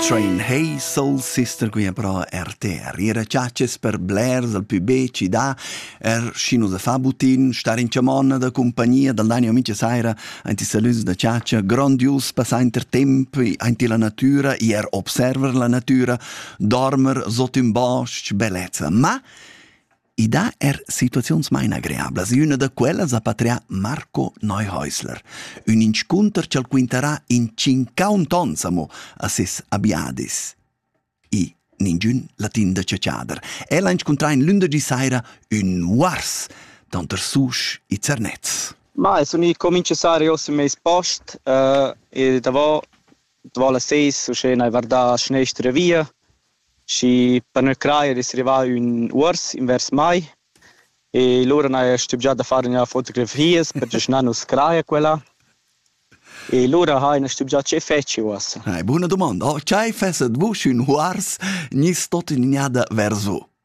Train hey soul sister qui però RTR. Ira ciaces per blers dal più be città, er schino da fa butin, star in chamonna da compagnia dal Dani Amice Saira, anti salus da ciacia, grandius passà inter temp, anti la natura, er observer la natura, dormer sot un bosc, bellezza. Ma I dà er situaziuns main agreablas e üna da quellas ha patrià Marco Neuhäusler, ün inscunter ch'al quintarà in tschincaund ons amo a ses abiadis. I ningün latin da chatschader. El ha inscuntrà in lündergi saira ün muars tanter Susch e Zernez. Ma es uni comincio sari ossa meis post uh, e davo davo las seis uschè n'hai vardà a schnestra via Schi per nus craja d'es rivà ün uors invers mai e lura n'haja stübgià da far üna fotografias perche schi na nu's craja quella. E lura haina stübgià che fetschi uossa. Buna dumanda. Chai fesset vus ün uors? Gniss tot gnada vers vo?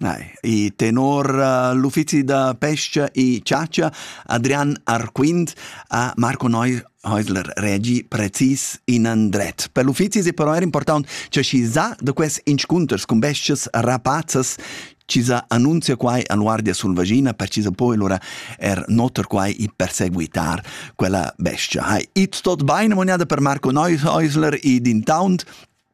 Nei, i tenor uh, l'uffizi da pesca e ciacia Adrian Arquint ha Marco Häusler regi precis in andret. Per l'uffizi è però er important che chi sa da quest inscunters con bestes rapazzas ci sa annunzia quai a Guardia Sulvagina per ci sa poi lura er notar quai e perseguitar quella bestia. Hai, it tot bene monada per Marco Häusler e din taunt